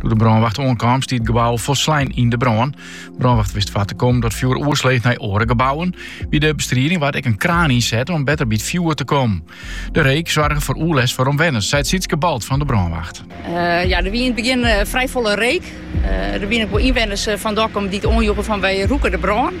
Doe de brânwacht oankaam stie it gebou folslein yn de brân. Brânwacht wist foar te kommen dat fjoer oersloech nei oare gebouwen. By de bestriding waard ek in kraan ynset om better by it fjoer te kommen. De reek soarge foar oerlêst foar omwenners, seit Sietske Balt fan de brânwacht. Eh, ja, der wie yn it begjin eh, frij folle reek. Eh, der wienen ek wol ynwenners fan Dokkum dy't it oanjoegen fan wy rûke de brân.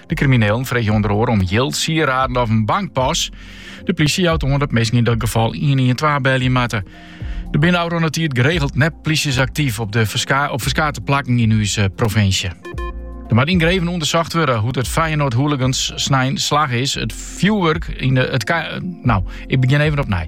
De kriminelen freegje ûnder oar om jild, sieraden of in bankpas. De plysje jout oan dat minsken yn dat gefal 112 belje moatte. Der binne ôfrûne tiid geregeld nep-plysjes aktyf op, de ferska, op ferskate plakken yn ús eh, provinsje. Der moat yngeand ûndersocht wurde hoe't it Feyenoord hooligans snein slagge is. It fjoerwurk yn de... It ka, no, ik begjin even opnij.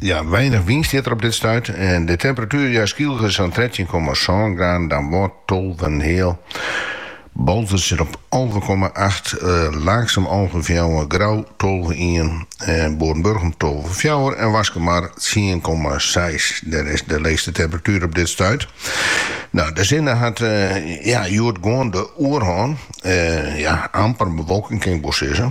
Ja, weinich wyn stiet der op dit stuit. De temperatuer ja Skylge sa'n trettjin komma sân graden, Damwâld tolve en in heal. Boalsert sit op alve komma acht, Laaksum alve en fjouwer, Grou tolve ien, Boarenburgum tolve fjouwer en Waskemar tsien komma seis. Der is de leechste temperatuer op dit stuit. No, de sinne hat ja hjoed gewoan de oerhân. Ja, amper bewolking kin ik wol sizze.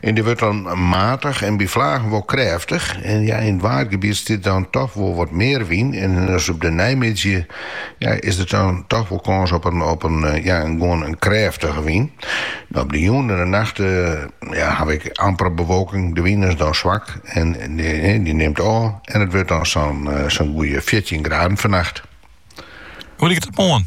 En dy wurdt dan matich en by flagen wol krêftich. En ja, yn it waadgebiet stiet dan dochs wol wat mear wyn. En as op de neimiddei ja, is der dan dochs wol kâns op in, op in, eh, ja, in gewoan in krêftige wyn. No, op de jûn en de nacht ja, hawwe we amper bewolking. De wyn is dan swak en dy, dy nimt ôf. En it wurdt dan sa'n sa'n goeie 14 graden fannacht. Hoe liket it moarn?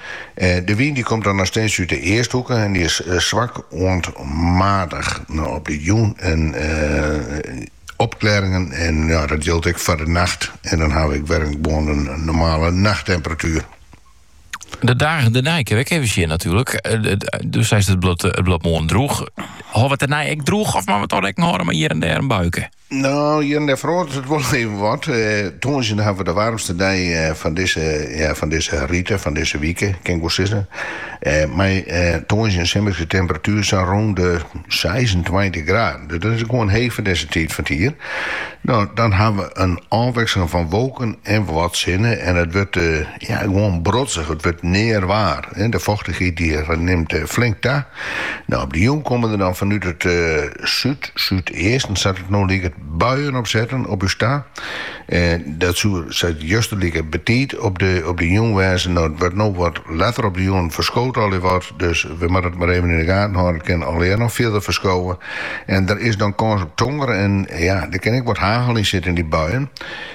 De wyn dy komt dan noch steeds út de easthoeke en dy is swak oant matich. Op de jûn opklearingen en ja, dat jildt ek foar de nacht en dan hawwe we ek wer gewoan in normale nachttemperatuer. De dagen dêrnei kinne we ek even sjen natuerlik. Do seist it bliuwt moarn droech. Hâlde we it dêrnei ek droech of moatte we toch rekken hâlde mei hjir en dêr in buike? No, hjir en dêr feroaret it wol even wat. Tongersdei hawwe we de waarmste dei fan dizze, ja, fan dizze rige, fan dizze wike, kin ik wol sizze. Mei tongersdei in simmerske temperatuer sa'n rûn de seisentweintich graden. Dus dat is gewoan heech foar dizze tiid fan 't jier. No, dan hawwe we in ôfwikseling fan wolken en wat sinne en it wurdt, Ja, gewoan brodzich, it wurdt nea waar. De fochtichheid die nimt flink ta. No, op de jûn komme der dan fanút it súd, súdeasten sa't it no liket, buien opsetten op ús ta. Dat soe sa't juster like betiid op de op de jûn wêze. No, it wurdt no wat letter op de jûn, ferskoot allegear wat, dus we moatte it mar even yn de gaten hâlde. It kin allegear noch fierder ferskowe en der is dan kâns op tonger en ja, der kin ek wat hagel yn sitte yn dy buien.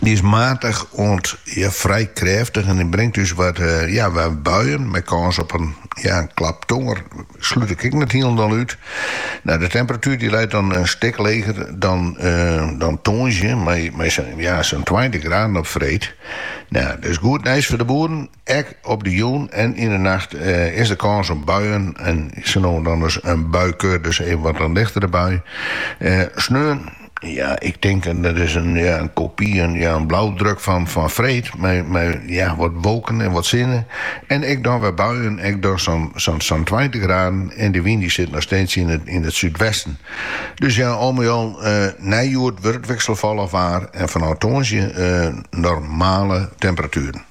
Dy is maatich oant frijwat krêftich en dy bringt ús wat buien mei kâns op in klap tonger, slút ik ek net hielendal út. De temperatuer dy leit dan in stik leger dan tongersdei, mei sa'n tweintich graden op freed. Dat is goed nijs foar de boeren. Ek op de jûn en yn de nacht is der kâns op buien en sa no en dan ris in buikeur, dus even wat in lichtere bui. Sneon, ja, ik tink dat is in kopy, in blauwdruk fan freed mei wat wolken en wat sinne en ek dan wer buien, ek dan sa'n tweintich graden en de wyn dy sit noch steeds yn it súdwesten. Dus ja, al mei al, nei hjoed wurdt wikselfallich waar en fanôf tongersdei normale temperatueren.